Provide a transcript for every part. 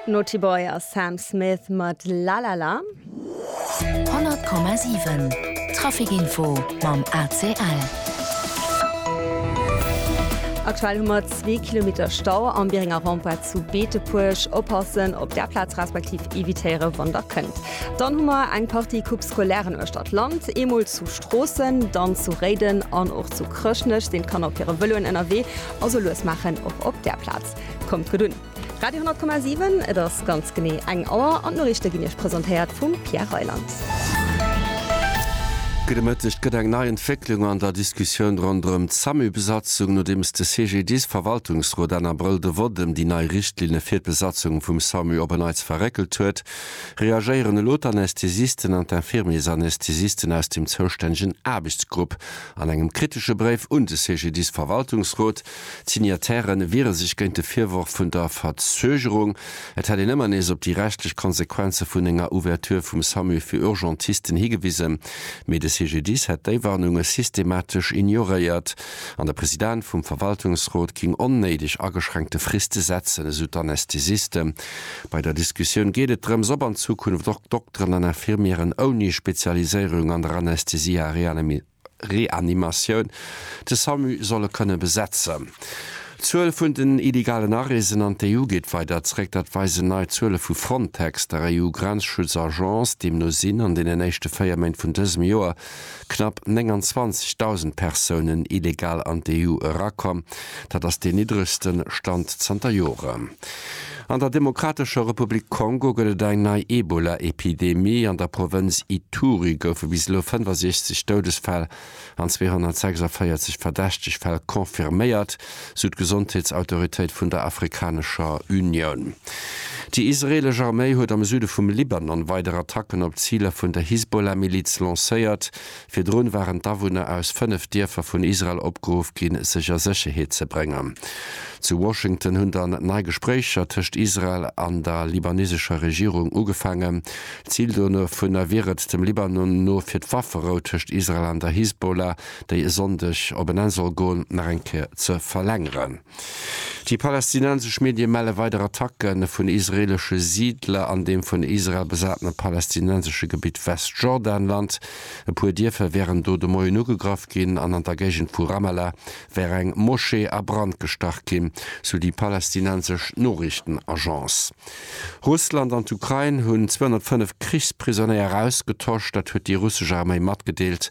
Naughty Boy a Sam Smith mat La La La. 100,7 Trafic Info mam ACL. Aktuell hu mer zwee Kilometer Stau am Bierenger Rempart zu Beetepuerg. Oppassen op där Plaz respektiv evitéiere wann der kënnt. Dann hu mer eng Partie Coupe Scolairen uechter d'Land. Eemol zu Stroossen, dann zu Réiden an och zu Chrëschtnech sinn d'Kanner op hire Vëloen ënnerwee. Also lues maachen och op där Plaz. Kommt gutt un! Radio 10,7, et ass ganz genee eng Auer an d'Noriichte ginn Iech presentéiert vum Pierre Reyland. Gudde Mëtteg. Et gëtt eng nei Entwécklung an der Diskussioun ronderëm d'SAMU-Besatzung. Nodeems de CGDIS-Verwaltungsrot Enn Abrëll de Vott ëm déi nei Richtlinne fir d'Besatzung vum SAMU op e Neits verréckelt huet, reagéieren elo d'Anästhesisten an d'Infirmiersanästhesisten aus dem zoustännegen Aarbechtsgrupp an engem kritesche Bréif un de CGDIS-Verwaltungsrot. D'Signataire wiere sech géint de Virworf vun der Verzögerung. Et hätt een ëmmer nees op déi rechtlech Konsequenze vun enger Ouverture vum Samu fir Urgentisten higewisen, mee de CGDIS hätt déi Warnunge systematesch ignoréiert an de President vum Verwaltungsrot géing onnéideg ageschränkte Friste setzen, esou d'Anästhesiste. Bei der Diskussioun geet et drëms, ob an Zukunft och Dokteren an Infirmieren ouni Spezialiséierung an der Anästhesie a Reanimation, Reanimatioun de Samu solle kënne besetzen. D'Zuel vun den illegalen Areesen an d'EU geet weider zréck. Dat weisen nei Zuele vu Frontex, der EU-Grenzschutz-Agence. Deemno sinn an deenen éischte 4 Méint vun dësem Joer knapp 29.000 Persounen illegal an d'EU erakomm. Dat ass deen niddregste Stand zanter Joren. An der Demokratescher Republik Kongo gëtt et eng nei Ebola-Epidemie. An der Provënz Ituri goufe bis elo 65 Doudesfäll an 246 verdächteg Fäll confirméiert, sou d'Gesondheetsautoritéit vun der Afrikanescher Unioun. Déi israeelesch Arméi huet am Süde vum Libanon weider Attacken op Ziler vun der Hisbollah-Miliz lancéiert. Virdrun waren d'Awunner aus fënnef Dierfer vun Israel opgeruff ginn, sech a Sécherheet ze bréngen. Zu Washington hunn dann nei Gespréicher tëscht Israel an der libanesescher Regierung ugefaangen. Zil dovunner wier et, dem Libanon no, fir d'Wafferou tëscht Israel an der Hisbollah, déi e Sonndeg op en Enn soll goen, nach eng Kéier ze verlängeren. Déi palästinensesch Medie melle weider Attacke vun israeelesche Siidler an deem vun Israel besatene palästinensesche Gebitt Westjordanland. E puer Dierfer wären do de Moien ugegraff ginn an an der Géigend vu Ramallah wär eng Moschee a Brand gestach ginn, sou déi palästinensesch Noriichtenagence. Russland an d'Ukrain hunn 205 Krichsprisonéier ausgetosch, dat huet déi russesch Arméi matgedeelt.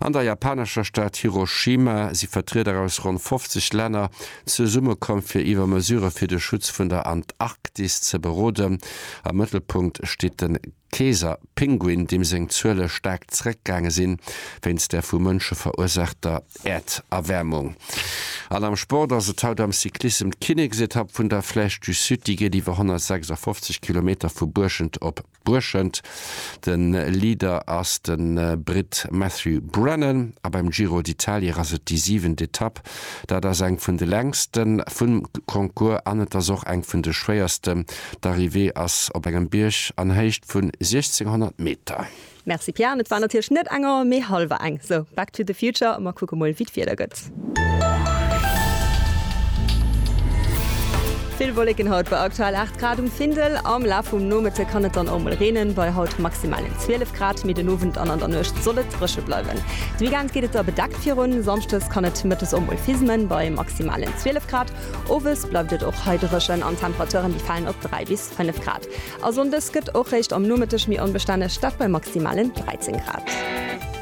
An der japanescher Stad Hiroshima si Vertrieder aus ronn 50 Länner zesummekomm, fir iwwer Mesurë fir de Schutz vun der Antarktis ze beroden. Am Mëttelpunkt steet de Keeserpinguin, deem seng Zuele staark zeréckgaange sinn, wéinst der vu Mënsche verursaachter Äerderwäermung. An am Sport ass et haut am Cyclissem d'Kinneksetapp vun der Flèche du Sud. Déi geet iwwer 156 Kilometer vu Buerschent op Brueschent. De Leader ass de Britt Matthew Brennan a beim Giro d'Italie ass et déi siwent Etapp. Dat ass eng vun de längste vum Concours an et ass och eng vun de schwéierste. D'Arrivée ass op engem Bierg an Héicht vun 1600 Meter. Merci Pian, et war natierlech net enger mee halwer eng. Sou, back to the future a mer kucke mol wéi d'Wieder gëtt. Vill Wolleken haut bei aktuell 8 Grad um Findel. Am Laf vum Nomëtte kann et dann och mol reenen, bei haut maximalen 12 Grad, mee den Owend an an der Nuecht soll et dréche bleiwen. De Weekend geet et da bedeckt virun, samschdes kann et mëttes och mol fismen, bei maximalen 12 Grad. Owes bleift et och hei dréchen an d'Temperaturen déi falen op 3 bis 5 Grad. A sonndes gëtt och réischt am Nomëtteg méi onbestänneg, dat bei maximalen 13 Grad.